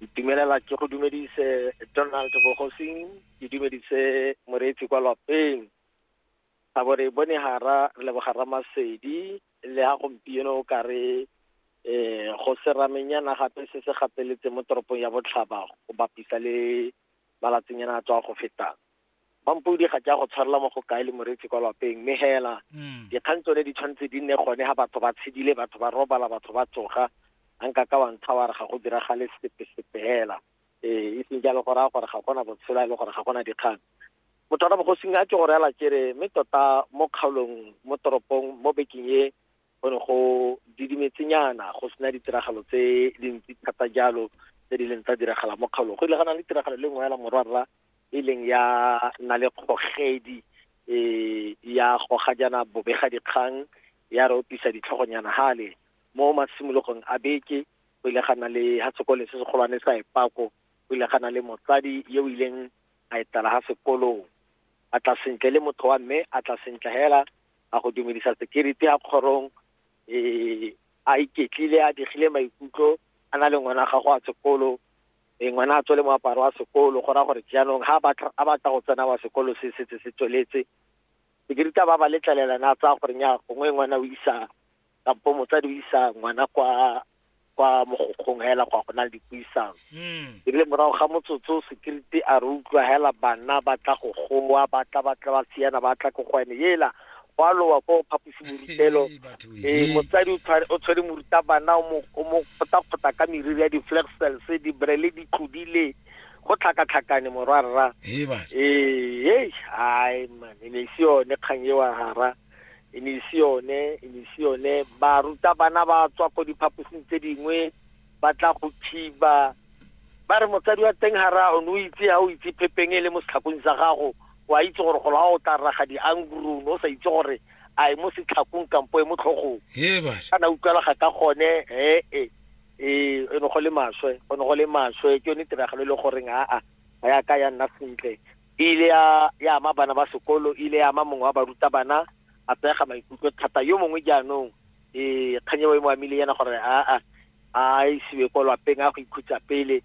itumelela ke go dumedise donald bogosing ke dumedise moreetsi kwa lapeng a bore bone hara leboga ramasedi le ha gompieno o ka re um go seramenyana gape se se gapeletse mo toropong ya botlhaba go bapisa le malatsinyana a tswa go fetang Mampodi ga ke a go tshwarela mo go kae le moretsi kwa lapeng mme hela mm. dikgang tsone di tshwanetse di nne gone ga batho ba tshedile batho ba robala batho ba tsoga a nka ka wa ntsha wa re ga go diragale sepe-sepe hela ee e seng jalo go raya gore ga gona botshelo a e le gore ga gona dikgang motho wa bogosing a ke go reela kere mme tota mo kgaolong mo toropong mo bekeng e go ne go didimetsenyana go sena ditiragalo tse dintsi thata jalo tse di leng tsa diragala mo kgaolong go ile ga na le tiragalo le nngwe ya morwarra e leng ya na le kgogedi um ya goga jana bobega dikgang ya re opisa ditlhogonyana gale mo masimologong a beke go ile ga na le ga sekole se segolwane sa epako go ile ga na le motsadi yo o ileng a etela ga sekolong a tla sentle le motho wa mme a tla sentle hela a go dumedisa security ya kgorong um a iketlile a digile maikutlo a na le ngwana gago a sekolo e ngwana a tswele moaparo wa sekolo go raya gore jaanong ga a batla go tsena wa sekolo se setse se tsweletse security ba ba letlelela na tsaya gore nya gongwe ngwana o isa kampo motsadi o isa ngwana kwa kwa mogokgong hela kwa go na le dipuisano mm. e le morago ga motsotso security a re utlwa hela bana ba tla go goa ba tla ba tla ba tsiyana ba tla ko go ene yela gwa lowa ko phaposi borutelo ee motsadi o tshwere morutabana o mo kgotakgota ka meriri ya di-flag cells dibrele di tlodile go tlhakatlhakane morwarra ee hai man e ne e se yone kgang e wa gara e ne ise yone e ne ise yone barutabana ba tswa ko diphaposing tse dingwe ba tla go thiba ba re motsadi wa teng ga raya one o itse ga o itse phepeng e le mo setlhakong sa gago wa itse gore golo ga o tla raga diangurung o sa itse gore a e mo setlhakong kampo e mo tlhogong kana utlwalaga ka gone ee e e ne go le maswe go ne go le maswe ke yone tiragalo e le goreng aa ga ya ka ya nna sentle e ile ya ya ama bana ba sekolo e ile ya ama mongwe wa barutabana a pega maikutlo thata yo mongwe jaanong e kganye wa mo amile yana gore a a a isiwe ko lapeng a go ikhutsa pele